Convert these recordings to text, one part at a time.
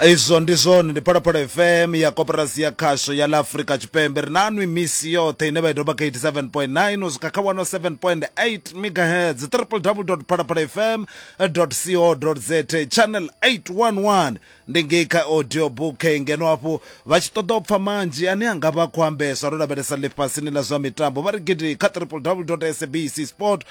izwo ndi zwone ndi phalaphala fm ya koporasi ya khasho ya la afurika tshipembe ri na nwi misi yoṱhe ine vha i doba kha 87.9 u swika kha 107.8 megahertz www phalaphala fm co za channel 811 ndi ngei kha audio book ngeno hafhu vha tshi ṱoḓa u pfa manzhi ane a nga vha khou ambeswa ro lavhelesa ḽifhasini ḽa zwa mitambo vha ri gidi kha www sabc sport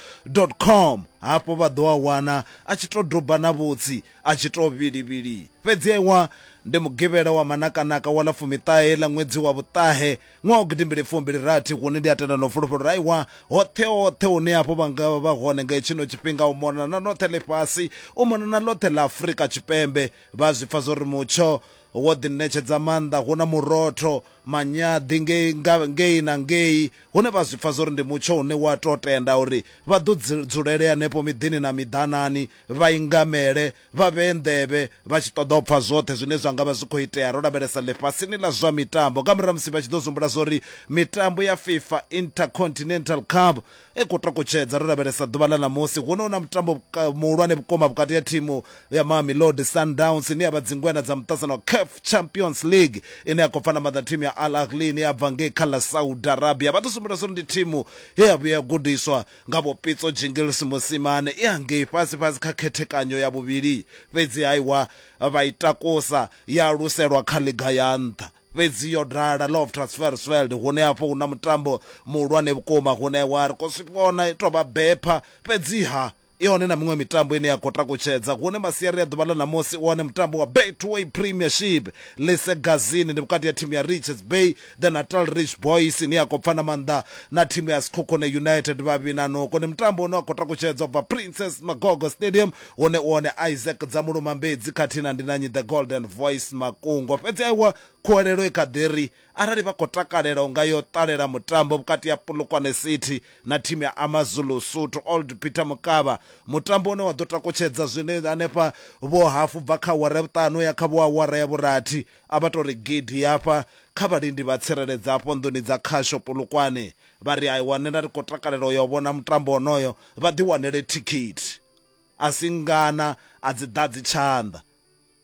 com hafho vha ḓo a wana a tshi tou doba na vhutsi a tshi tou vhilivhili. Fhedzi ewa, ndi Mugivhela wa manakanaka wa ḽa fumiṱahe ḽa ṅwedzi wa vhuṱahe ṅwaha wa gidimbili fumbili rathi hune ndi a tenda na u fulufhela uri aiwa, hoṱhe hoṱhe hune hafhu vha nga vha vha hone nga hetshino tshifhinga, u mona na ḽoṱhe ḽifhasi, u mona na ḽoṱhe ḽa Afrika Tshipembe, vha a zwi pfa zwa uri mutsho Wo ḓi ṋetshedza maanḓa, hu na murotho, manyaḓi ngei nga ngei na ngei, hune vha zwi pfa zwo ri ndi mutsho une wa tou tenda uri vha ḓo dzi dzulele hanefho miḓini na miḓanani, vha ingamele, vha vhee nḓevhe, vha tshi ṱoḓa u pfa zwoṱhe zwine zwa nga vha zwi khou itea ro lavhelesa ḽifhasini ḽa zwa mitambo, nga murahu ha musi vha tshi ḓo zwi humbula zwa uri mitambo ya FIFA Intercontinental Cup E khou takutshedza ro lavhelesa ḓuvha ḽa ṋamusi huno hu na mutambo muhulwane vhukuma vhukati ha thimu ya Mamelodi Sundowns ine ya vha dzingweṋa dza muṱasano wa CAF Champions League ine ya khou pfana maḓa thimu ya Al Ahly ine ya bva ngei kha ḽa Saudi Arabia. Vha ḓo sumbedzwa uri ndi thimu ye ya vhuya ya gudiswa nga Vho Pitso Jingles Mosimane i hangei fhasi fhasi kha khethekanyo ya vhuvhili fhedzi haiwa vha i takusa ya luselwa kha ḽiga ya nṱha. Fhedzi yo ḓala Love Transfersveld hune afho hu na mutambo muhulwane vhukuma hune wa ri khou zwi vhona i tou vha bepha. Fhedziha i hone na miṅwe mitambo ine ya khou takutshedza hune masiari a ḓuvha ḽa ṋamusi u hone mutambo wa Betway Premiership Ḽisegazini, ndi vhukati ha thimu ya Richards Bay The Natal Rich Boys ine ya khou pfana maanḓa na thimu ya Sekhukhune United. Vhavhi na Noko ndi mutambo une wa khou takutshedza u bva Princess Magogo Stadium One one Isaac Dzamulumambedzi khathihi na Ndinanyi The Golden Voice Makungo. Fhedzi aiwa khuwelelo i kha ḓi ri arali vha khou takalela u nga yo ṱalela mutambo vhukati ha Polokwane City na thimu ya AmaZulu Suthu Old Peter Mokaba, mutambo une wa ḓo takutshedza zwino hanefha vhohafu bva kha awara ya vhuṱanu u ya kha vhoawara ya vhurathi, a vha tou ri gidi hafha kha vhalindi vha tsireledzi hafho nḓuni dza khasho Polokwane. Vha ri aiwa nṋe nda ri khou takalela u ya u vhona mutambo wonoyo vha ḓiwanele thikhithi. A si ngana, a dzi ḓadzi tshanḓa.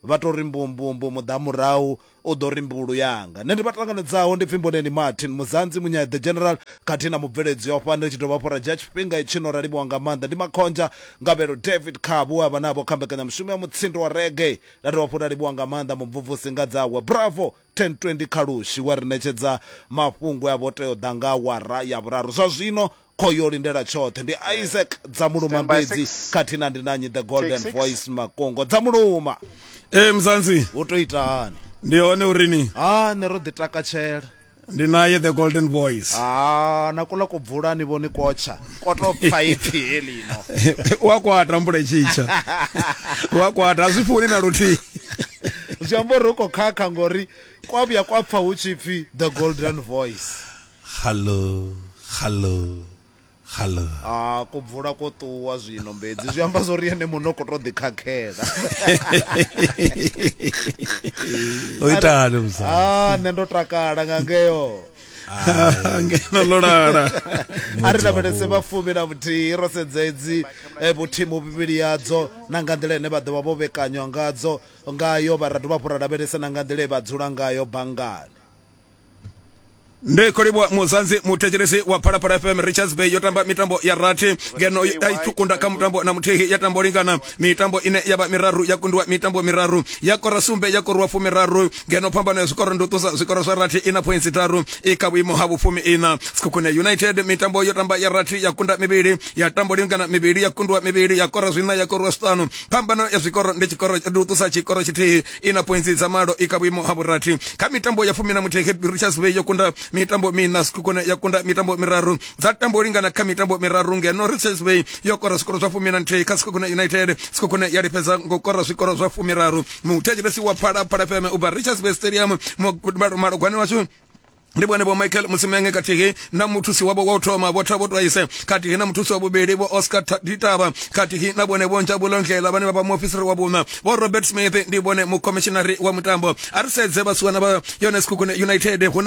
Vha tou ri mbumbumbu, muḓamurahu u ḓo ri mbulu yanga. Nṋe ndi vha ṱanganedzaho ndi Pfimboneni Martin, Muzanzi Munyae the General khathihi na mubveledzi wa fhano. Ri tshi dovha hafhu ra dzhia tshifhinga i tshino ra livhuwa nga maanḓa ndi Makhonzha Ngavhelo David Khabu we a vha navho kha mbekanyamushumo ya mutsindo wa reggae. Ra dovha hafhu ra livhuwa nga maanḓa mumvumvusi nga dzawe Bravo 1020 Khalushi we a ri ṋetshedza mafhungo e a vha o tea u ḓa nga awara ya vhuraru. Zwa zwino Kho yo lindela tshoṱhe ndi eh. Isaac dza muluma mbedzi khathihi na ndi na nyi the golden voice makongo dza muluma ee eh, mzanzi wo to ita hani ndi hone uri ni ha ne ro ḓi takatshela ndi naye the golden boys ah na kula kubvula ni voni kotsha koto phaiphi helino wa kwata mbule chicha wa kwata azifuni na luthi zwi amba uri u khou khakha ngori kwa vhuya kwa pfa hu tshi pfi the golden voice Xalo, xalo, xalo. Ha, ko bvula ko ṱuwa zwino mbedzi. Zwi amba zwo ri ene muṋe u khou tou ḓikhakhela. O ita hani musadzi? Ha, nṋe ndo takala nga ngeo. Ngeno ḽo lala. A ri lavhelese vha fumi na vhuthihi ro sedza edzi eh, vhuthimu vhivhili yadzo na nga nḓila ine vha ḓo vha vho vhekanywa ngadzo ngayo vha ra dovha hafhu ra lavhelesa na nga nḓila ye vha dzula ngayo banngani. ndi khou livhuwa muzanzi muthetshelesi wa phalaphala fm richards bay yo tamba mitambo ya rathi ngeno a i kunda kha mutambo na muthihi ya tambo lingana mitambo ine ya vha miraru ya kundiwa mitambo miraru ya kora sumbe ya korwa fumiraru ngeno phambano ya zwikoro ndi u ṱusa zwikoro zwa rathi ina pointsi tharu i kha vhuimo ha vhufumi ina sikhukhune united mitambo yo tamba ya rathi ya kunda mivhili ya tambo lingana mivhili ya kundiwa mivhili ya kora zwina ya korwa zwiṱanu phambano ya zwikoro ndi tshikoro ndi u ṱusa tshikoro tshithihi i na pointsi dza malo i kha vhuimo ha vhurathi kha mitambo ya fumi na muthihi cape richards bay yo kunda mitambo miṋa zwikhukune ya kunda mitambo miraru dza tambo lingana kha mitambo miraru ngeno richards bay yo kora zwikoro zwa fumi na nthihi kha zwikhukune united zwikhukune ya lifhedza ngo kora zwikoro zwa fumiraru muthetshelesi wa phalaphala feme u bva richards bay stadium malugwani washu ndi vhone vho michael musimenge khathihi na muthusi wavho wa u thoma vho thabo twaise khathihi na muthusi wa vhuvhili vho oscar ditaba khathihi na vhone vho njabulo ndlela vhane vha vha muofisiri wa vhuṋa vho robert smith ndi vhone mukomishinari wa mutambo a ri sedze vhasiwana vha yones khukune united huna